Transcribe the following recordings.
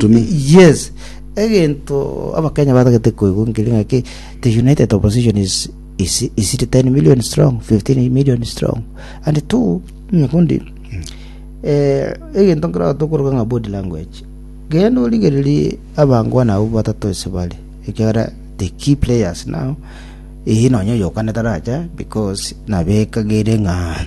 Tumi. Yes. Egento abakenya batagete koigwa nkeri ng'aki the united opposition is is is 10 million strong, 15 million strong. And two nyakundi eh egento nkira tokoroka ng'a body language. Genda origererie abango nabo batato ase bare. Ekera the key players now. Eyi nonye yokanete racha because nabekagere ng'a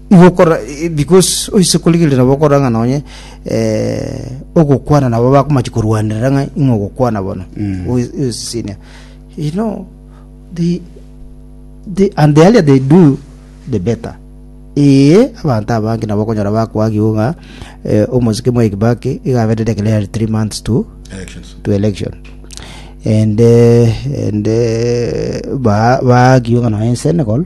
Igo okora eh, because oise korigereria nabo okoranga nonye eh, ogokwana nabo bakomachi korwanerera ng'a ing'o ogokwana bono Mm. Ois- oisisinia you know they, they, and the earlier they do the better ee abanto abange nabo okonyora bakwagigwa ng'a eh, omosike mwa ekibaki igabete declare three months to Elections. to election and uh, and uh, ba bagiunga na in Senegal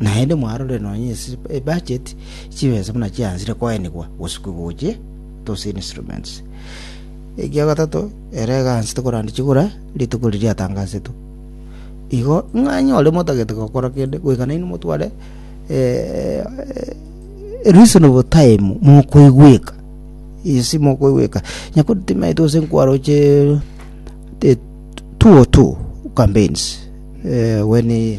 Naende mwarorire nonya ase ebudget, chibesa buna chiaanchire koenigwa gosukwa gochia those instruments. Ekia gatato, ere egaanchete koranda chigura rituko riria riatangasetwe. Igo ng'a onye ore motagete gokora kende, goika nainwe motware eh, eh, reasonable time mokoigweka isi mokoigweka nyakotimaete ase nkwaroche the two or two campaigns eh, when eh,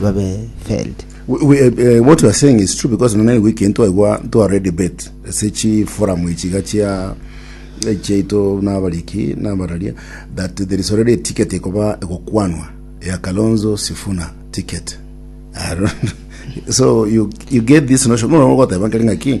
babe failed. What you are saying is true because nonye naigwe ekintu twaigwa ntware debate ase chi forum echi ga chia chiaito na abariki na abararia that there is already a ticket ekoba egokwanwa ya Kalonzo Sifuna ticket so you, you get this notion mono goteba keri ngaki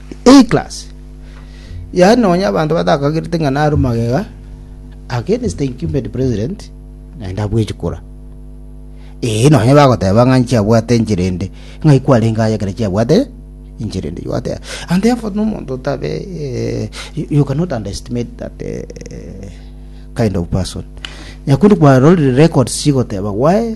Eclass yaani nonya abanto batakagerete ng'a naro magega against the incumbent president naende abwechi kura ee nonya bagoteba ng'a nchiabwate enchera ende ng'a ikwarenge aye ekero chiabwate enchera ende yoteba and therefore nomonto otabe eh, you, you cannot underestimate that eh, eh, kind of person nyakundi kwarorire records chigoteba gwae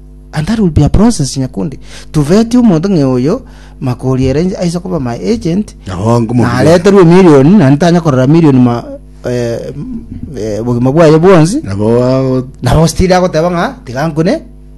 And that will be a process nyakundi to vet omonto ng'e oyo makori ere nche- aise koba my agent Nabo ngomo- nareterwe emilioni naende tanya korora emilioni ma eh, m- eh, obogima bwaye bwonsi nabo ago- nabo stili agoteba ng'a tiga nkune